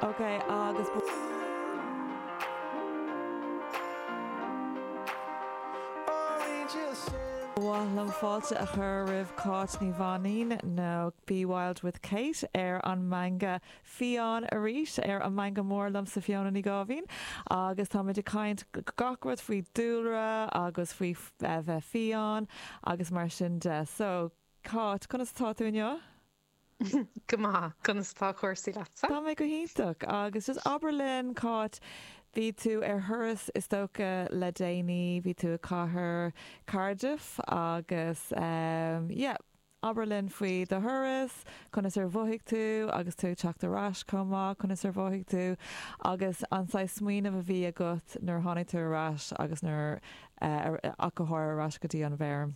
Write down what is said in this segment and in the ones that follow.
Ok, agus ba mhaith liom fáilte a chur roimh Cáit Ní Mhainín, nó Be Wild with Kate, ar an Meangadh Fiáin, arís, ar An Meangadh Mór liomsa Fiona Ní Gáibhín, agus táimid ag caint gach rud faoi dúlra agus faoi bheith fiáin agus mar sin de. So, Cáit, conas atá tú inniu? Go maith. Conas tá cúrsaí leatsa? Tá mé go hiontach. Agus just abair linn, Cáit, bhí tú ar thuras is dócha le déanaí, bhí tú i cathair Cardiff agus ehm yeah, abair linn faoi do thuras, conas ar mhothaigh tú agus tú ag teacht ar ais chomh maith, conas ar mhothaigh tú agus an saghas smaoineamh a bhí agat nuair a tháinig tú ar ais agus nuair ach go háirithe ar ais go dtí an bhfeirm.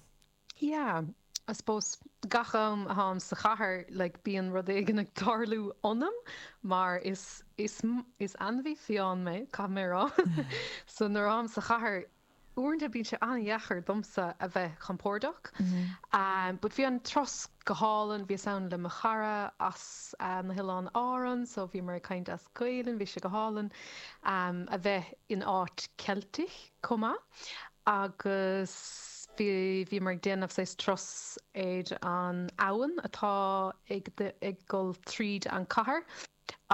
Yeah, I suppose gach am atáim sa chathair like bíonn rud éigin ag tarlú ionam mar is is is ainmhí fiáin mé, caithfidh mé a rá. So nuair atáim sa chathair uaireanta bíonn sé an-dheacair domsa a bheith compordach. Umm but bhí an turas go hálainn, bhíos ann le mo chara as na hOileáin Árann, so bhíomar ag caint as Gaelainn, bhí sé go hálainn umm a bheith in áit Ceilteach. chomh maith agus bhíomar ag déanamh saghas turas ar an abhainn atá ag dul tríd an cathair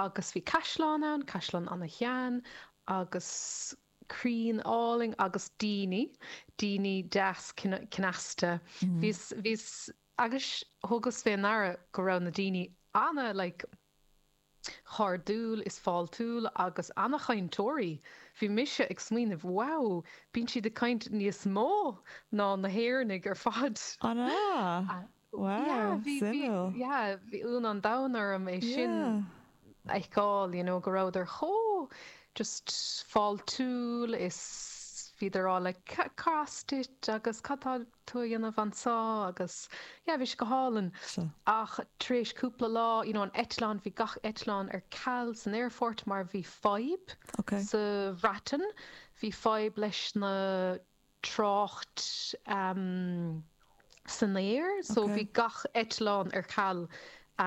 agus bhí caisleán ann, caisleán ana-shean agus crainn álainn agus daoine, daoine deas cneasta. Bhíos, bhíos, agus thugas fé ndeara go raibh na daoine ana-like, chairdiúil is fáiltiúil agus ana-chainteoirí. Bhí mise ag smaoineamh, wow, bíonn siad ag caint níos mó ná na hÉireannaigh ar fad. An ea? Wow, suimiúil. Yeah, bhí ionadh an domhain orm é sin a fheiceáil, you know, go rabhadar chomh just fáiltiúil is bhíodar like cad as duit agus cad tá, tú a dhéanamh anso agus yeah bhí sé go hálainn so ach tar éis cúpla lá you know an eitleán bhí gach eitleán ar ceal, san aerfort mar bhí fadhb okay sa Bhreatain bhí fadhb leis na trácht ehm san aer so bhí okay gach eitleán ar ceal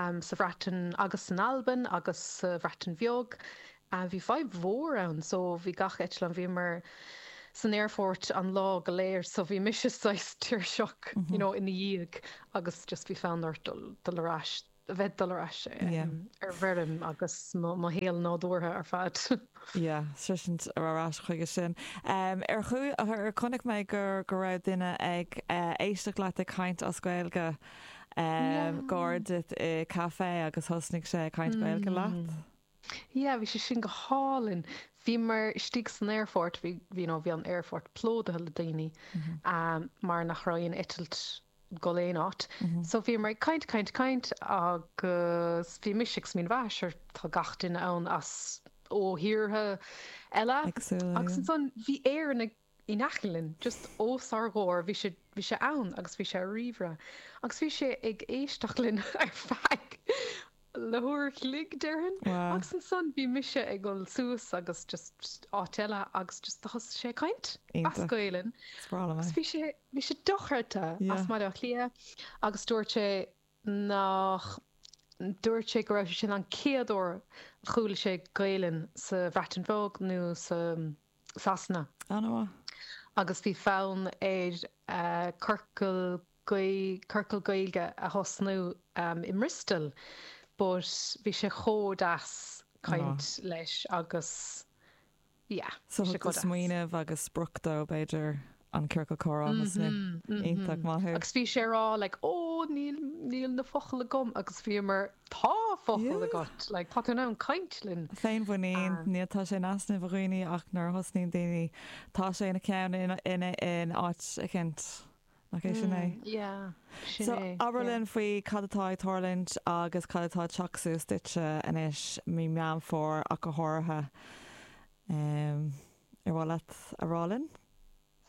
ehm sa Bhreatain agus san Albain agus sa Bhreatain Bheag a bhí fadhb mhór ann so bhí gach eitleán bhíomar san aerfort an lá go léir so bhí mise saghas tuirseach you know ina dhiaidh agus just bhí fonn ort dul dul ar ais a bheith ag dul ar ais ar an bhfeirm agus mo mo shaol nádúrtha ar fad yeah sroisint ar ar ais chuige sin um ar chuaigh ar ar chonaic mé gur go raibh duine ag uh, éisteacht leat ag caint as Gaeilge um, yeah gar duit i café agus thosnaigh sé ag caint Gaeilge leat mm. Yeah, bhí sé sin go hálainn. Bhíomar istigh san aerfort, bhí you know bhí an t-aerfort plódaithe le daoine um mar nach raibh aon eitilt ag dul aon áit. So bhíomar ag caint, caint, caint agus bhí mise ag smaoineamh, sure tá gach duine ann as ó thíortha eile Éagsúla, agus yeah. ansan bhí Éireannach, in aice linn, just os ár gcomhair, bhí sé, bhí sé ann agus bhí sé ar ríomhaire agus bhí sé ag éisteacht linn ar feadh le huair an chloig déarfainn Wow. agus ansan bhí mise ag dul suas agus just áit eile agus just thosaigh sé ag caint as Iontach. Gaelainn Is breá liom agus é. bhí sé, bhí sé dochreidte as Yeah. Baile Átha Cliath agus dúirt sé nach, dúirt sé go raibh sé sin an chéad uair a chuala sé Gaelainn sa Bhreatain Bheag nó sa, Sasana. Anuraidh. agus bhí fonn air ciorcal Gaeilge a thosnú i mBriostó but bhí sé chomh deas caint leis agus yeah. Smaoineamh agus sprioc dó b'fhéidir an ciorcal comhrá ansin iontach maith tú. Agus bhí sé a rá like oh níl níl na focail agam agus bhíomar tá focail agat like tá tú in ann caint linn. Féinmhuinín, níl tá sé in easnamh a dhaoine ach nuair a thosnaíonn daoine tá sé ina gceann ina ina in áit eicint nach é sin é? Yeah sin é. So abair linn faoi cad atá ag tarlúint agus cad atá ag teacht suas duitse anois mí Meán Fómhair ach go háirithe. Ar mhaith leat a rá linn?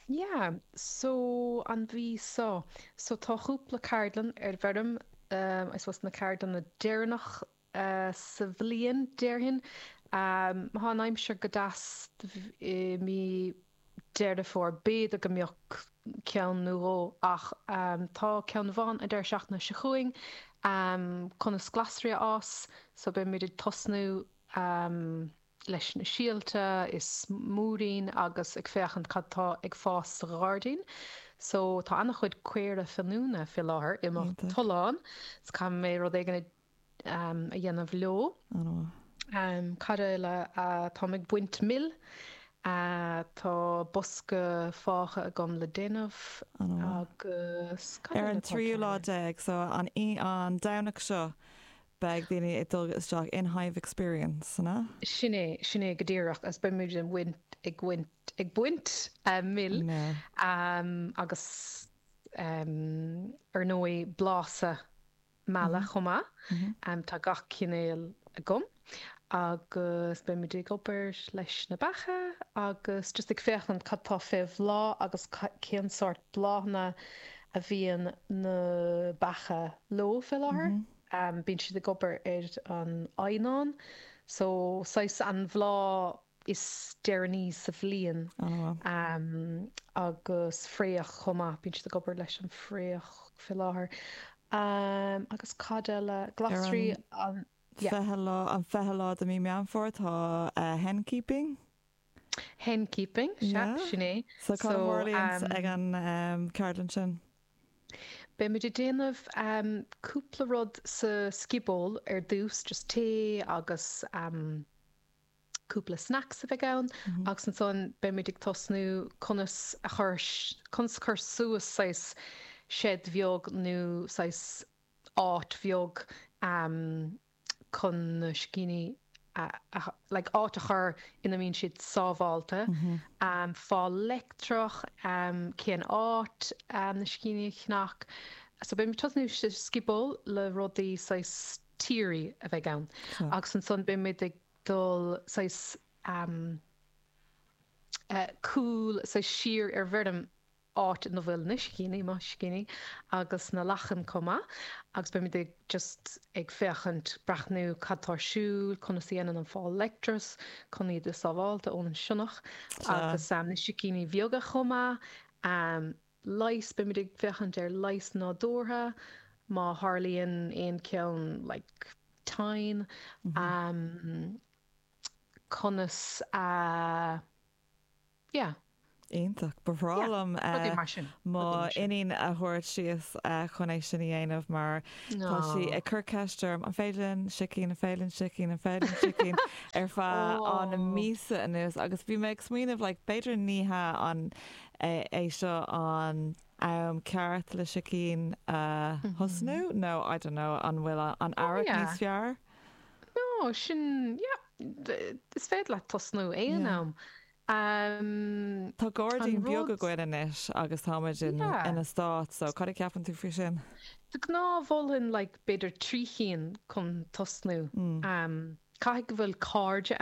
Yeah, so an mhí seo, so tá cúpla ceardlann ar an bhfeirm, I suppose na ceardlanna deireanacha sa bhliain, déarfainn. Má tá an aimsir go deas i mí Deireadh Fómhair, b'fhéidir go mbeadh ceann nó dhó ach tá ceann amháin an deireadh seachtaine seo chugainn, conas glasraí a fhás, so beimid ag tosnú. leis na síolta is múirín agus ag féachaint cad tá ag fás sa ghairdín so tá an-chuid caora finiúna fé láthair i mo Iontach. thollán so caithfidh mé rud éigin a a dhéanamh leo. An-mhaith. Cad eile táim ag baint meala tá bosca fágtha agam le déanamh An-mhaith. agus cad Ar eile an atá tríú lá cearr? déag so an an Domhnach seo beidh daoine ag dul isteach in hive experience-anna. Sin é, sin é go díreach agus beimid ag bhaint, ag bhaint, ag baint mil agus ar ndóigh blaiseadh meala chomh maith, tá gach cineál agam agus beimid ag obair leis na beacha agus just ag féachaint cad tá fé bhláth agus cén sórt bláthanna a bhíonn na beacha leo fé láthair. bíonn siad ag obair ar an eidhneán so saghas an bhláth is deireanaí sa bhliain agus fraoch chomh maith bíonn siad ag obair leis an fraoch fé láthair agus cad eile glasraí an fichiú lá an fichiú lá de mí Meán Fómhair tá hen keeping hen keeping sin é so ag an ceardlann sin Beimid ag déanamh cúpla rud sa scioból ar dtús, just tae agus cúpla snacks a bheidh ann agus ansan beimid ag tosnú conas a chur, conas a chur suas saghas shed bheag nó saghas áit bheag. chun na sicíní like áit a chur ina mbíonn siad sábháilte, fál leictreach, cén áit na sicíní a cheannach, so beidh mé ag tosnú sa scioból le rudaí saghas theory a bheidh ann agus ansan beidh muid ag dul saghas cúl saghas siar ar an bhfeirm áit ina bhfuil na sicíní, mo shicíní, agus na lachain chomh maith agus beimid ag just ag féachaint, breathnú cad atá ar siúl, conas a dhéanann an fál leictreach chun iad a sábháilt ón sionnach agus na sicíní beaga chomh maith. Leighis, beimid ag féachaint ar leighis nádúrtha má tharlaíonn aon cheann like tinn, conas a. Yeah. Iontach. Ba bhreá Yeah. liom Rudaí mar sin. mo Rudaí mar sin. iníon a thabhairt síos chun é sin a dhéanamh mar tá sí ag Oh. cur ceist orm, an féidir linn sicín, an féidir linn sicín, an féidir linn sicín ar feadh an Oh. míosa anuas agus bhí mé ag smaoineamh like b'fhéidir ní hea an é seo an am ceart le sicín a thosnú Mhm. nó I don't know an bhfuil an Oh earrach yeah. níos fearr? No, sin, yeah, is féidir leat tosnú aon am. Tá gairdín beag againn anois agus táimid in eastát so cad a cheapann tú faoi sin? De ghnáth mholfainn like b'fhéidir trí chinn chun tosnú. Caithfidh go bhfuil cairde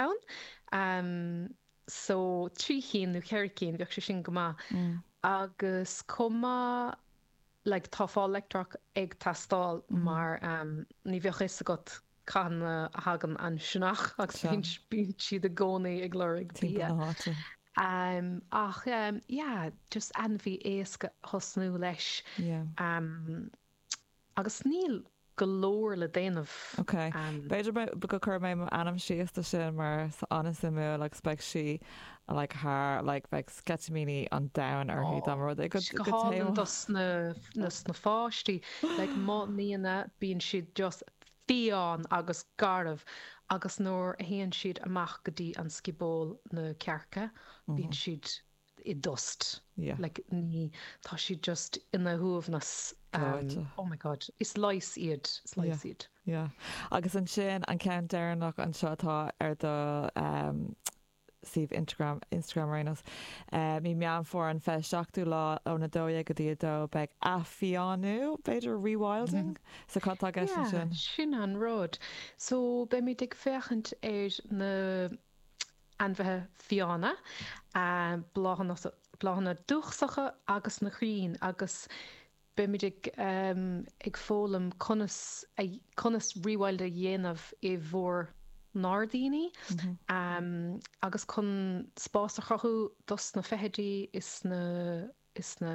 ann so trí chinn nó ceithre cinn bheadh sé sin go maith agus chomh maith like tá fáil leictreach ag teastáil mar ní bheadh fhios agat cathain a thagann an sionnach agus bíonn bíonn siad i gcónaí ag lorg bia ach yeah just ainmhí éasca a thosnú leis agus níl go leor le déanamh. Ok. B'fhéidir go gcuirfidh mé m'ainm síos do sin mar tá sé an-suimiúil agus beidh sí like thar like bheadh sceitimíní an domhain uirthi dá mba rud é go dtaispeánfainn dos na pháistí like mo nianna bíonn siad just fiáin agus garbh agus nuair a théann siad amach go dtí an scioból na cearca bíonn siad i dtost. Yeah. Like ní, tá siad just ina suaimhneas Gleoite. oh my god, is leigheas iad, is leigheas iad. Yeah. Agus ansin an ceann deireanach anseo atá ar do suíomh Instragram, Instagram ar aon nós. Mí Meán Fómhair an fiche seachtú lá ón 12 go dtí 2 beidh athfhiánú, b'fhéidir, rewilding? So cad atá i gceist ansin? Yeah, sin an rud. So beimid ag féachaint ar na. ainmhithe fiáine, bláthanna dúchasacha agus na crainn agus beimid ag foghlaim conas rewild a dhéanamh i bhur ngairdíní agus chun spás a chruthú dos na feithidí is na.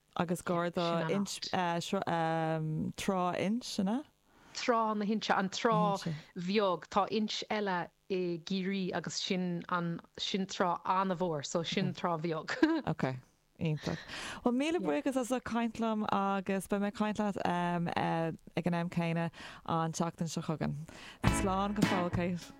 agus Garda Sin an Trá Inse na. Trá na hInse, an Trá Bheag. Tá inse eile i gCiarraí agus sin an, sin trá an-mhór so sin Trá Bheag. Ok, iontach. Bhuel míle buíochas as ucht caint liom agus beidh mé ag caint leat ag an am céanna an tseachtain seo chugainn. Slán go fóill Kate.